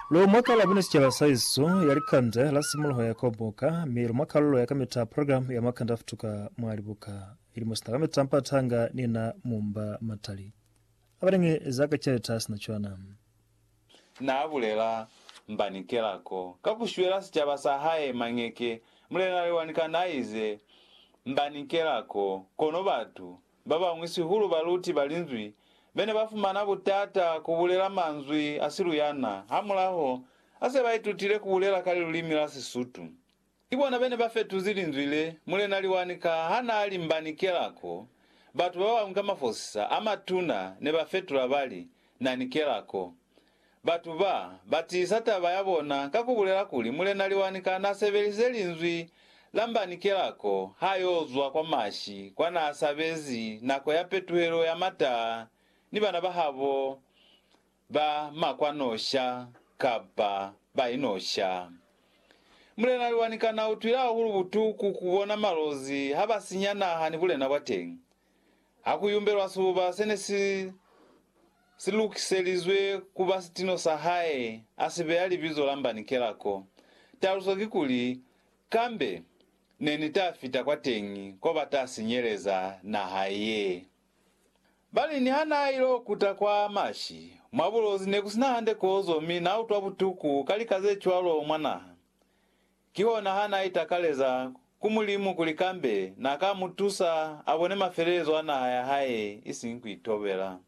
Lu mwa kalo ya bune sicaba sa Yesu ya likande la simuluho ya kobuka, mi lu mwa kalulo ya kamita ya program ya makande a futuka mwa libuka. Milimo sina kamita mpa tanga ni na mumba matali a balingi za ka celeta ha sina cwana. Na bulela mbani kelako ka ku shwela sicaba sa hae mañeke? Mulena Lewani kana ize, Mbani kelako, kono batu Ba bañwi sihulu baluti ba Linzwi be ne ba fumana butata ku bulela manzwi a siluyana hamulaho ha se ba itutile ku bulela ka lilulimi la Sisutu. Ki bona be ne ba fetuzi linzwi le Mulena Liwanika ha naa limbanikela ko batu ba bañwi ka mafosisa a matuna ne ba fetula ba li, Nanikela ko. Batu ba, ba tiisa taba ya bona ka ku bulela kuli Mulena Liwanika n'a sebelisize linzwi la mbanikela ko h'a y'o zwa kwa Mashi kwa n'a sabezi nako ya petuhelo ya mataa ni bana ba habo ba makwanosha kapa ba inosha. Mulena Liwanika n'a utwile hahulu butuku ku bona malozi ha ba sinya naha ni bulena bwa teñi. Ha ku yumbelwa sibuba se ne si si lukiselizwe ku ba sitino sa hae, a si beya libizo la Mbanikela ko. Taluso kikuli, Kambe ne ni ta fita kwateñi ko ba ta sinyeleza naha ye. Ba li niha n'a il'o kuta kwa mashi mwa bulozi ne ku si na hande kozo mi n'a utwa butuku ka lika ze cwalo mwa naha. Kihona ha n'a itakaleza ku Mulimu kuli kambe n'a ka mu tusa a bone mafelelezo a naha ya hae isiñi ku itobela.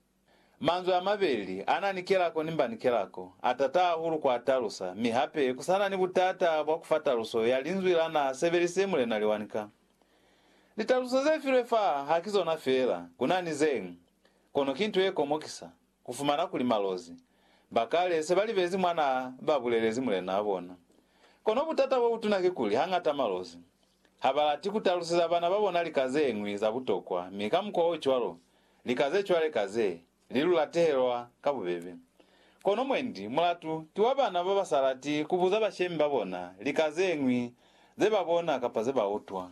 Manzwi a mabeli a na ni kelako ni mba ni kelako, a tata hahulu ku a talusa, mi hape ku sa na ni butata bwa ku fa taluso ya linzwi la n'a sebelisize Mulena Liwanika. Litaluso ze filwe fa ha ki zona fela, ku na ni ze ñwi, kono ki nto ye komokisa. Ku fumana kuli malozi ba kale se ba libezi mwa n'a ba bulelezi mulen'a bona. Kono butata bo butuna kikuli hañata malozi ha ba lati ku taluseza bana ba bona lika ze ñwi za butokwa mi ka mukwa o cwalo lika ze cwale ka ze li lu latehelwa ka bubebe. Kono mwendi mulatu ki wa bana ba ba sa lati ku buza bashemi ba bona lika ze ñwi ze ba bona kapa ze ba utwa.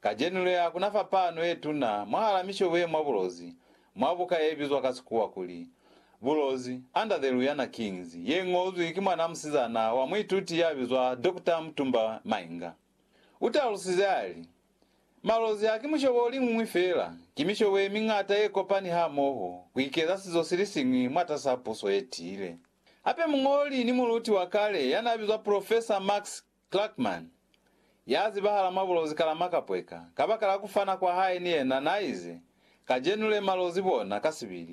Kacenu le, ha ku na fapano ye tuna mwahal'a mishobo ye mwa bulozi, mwa buka ye bizwa ka Sikuwa kuli, Bulozi, Under the Luyana Kings, ye ñozwi ki mwan'a musizana wa muituti ya bizwa Doctor Mutumba Mainga. U talusize a li, Malozi haki mushobo o liñwi fela, ki mishobo ye miñata ye kopani hamoho ku ikeza sizo si li siñwi mwatas'a puso ye tiile. Hape muñoli ni muluti wa kale ya n'a bizwa Profesa Max Clarkman, ya zibahala mwa bulozi kala makapweka, kabakala kufana kwa hae ni yena, naize, Kajenu le malozi bona, kasibili,